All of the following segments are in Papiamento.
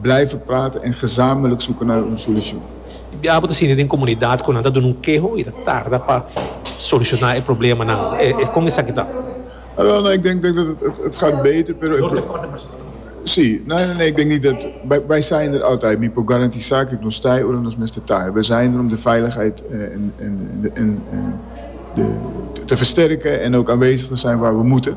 Blijven praten en gezamenlijk zoeken naar un solucion. Di biaha bo ta sinti den comunidad cu nan ta duna un keho y ta tarda pa soluciona e problemanan. E con esaki ta? Awel, no, ik denk dat het gaat beter, pero e pro. Si, no, no, ik denk niet dat, wij zijn er altijd, mi por garantisa cu nos ta ora nos mester ta. We zijn er om de veiligheid en de te versterken en ook aanwezig te zijn waar we moeten.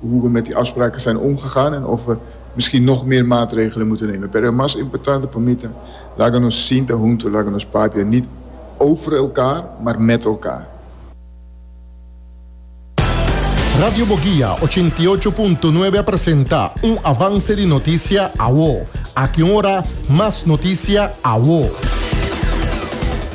Hugo met e afspraken zijn omgegaan en of we misschien nog meer maatregelen moeten nemen. Pero e mas importante pa mi ta, laga nos sinta hunto, laga nos papia niet over elkaar, maar met elkaar. Radio Bogia ochenta i ocho punto nuebe a presenta un avance di noticia awo. Aki un ora mas noticia awo.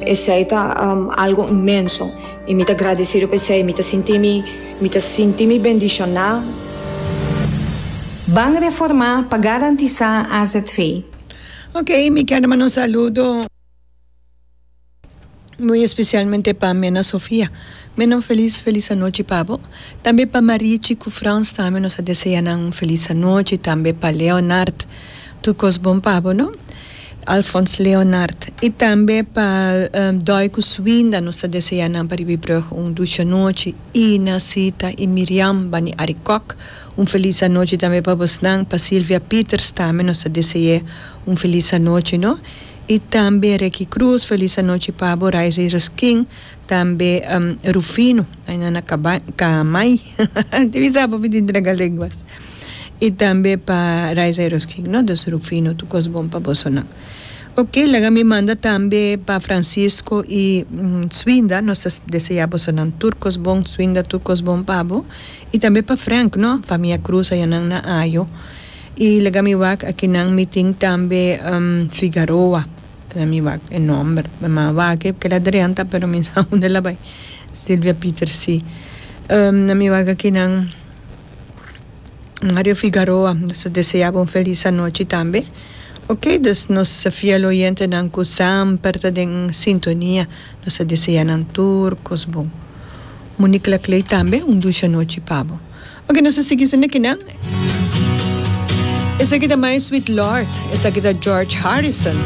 Esei ta algo inmenso i mi ta gradesido pa esei. Mi ta sinti mi, mi ta sinti mi bendishoná. Ban Reformá pa garantisá azv. Ok, mi kende manda un saludo muy especialmente pa Mena Sofia. Mena un feliz feliz anochi pa bo. Tambe pa Marichi cu Frans tambe nos a deseanan un feliz anochi, tambe pa Leonard. Tur kos bon pa bo no. Alphonse Leonard y tambe pa Doy cu Swinda nos ta desea nan pa riba e brug un duchi anochi Ina, Sita y Miriam bani Ari Kok un feliz anochi tambe pa bosnan pa Silvia Pieters tambe nos ta dese'e un feliz anochi no y tambe Reky Cruz feliz anochi pa bo Raiza y Ruskin. Tambe Rufino, aynan na Caamai, tin bisa apo mi tin traga lenguas, y tambe pa Rise Idols King, no dos Rufino tu cos bon pa bosonan. Ok laga mi manda tambe pa Francisco y Swinda, nos ta desea bosonan tur cos bon, Swinda tur cos bon pa bo, y tambe pa Frank no, famia Cruz ayanan na Ajo, y laga mi wak akinan mi tin tambe Figaroa. Keda mi wak e nomber mi a wak e keda drenta pero mi sa unda la bai Silvia Pieter si na mi wak akinan Mario Figaroa nos ta desea bo un felis anochi tambe ok dus nos fiel oyentenan ku semper ta den sintonia nos ta deseanan tur kos bon Monicla Clay tambe un dushi anochi pa bo Oke nos a sigui sende kinan esaki ta my sweet lord esaki ta George Harrison.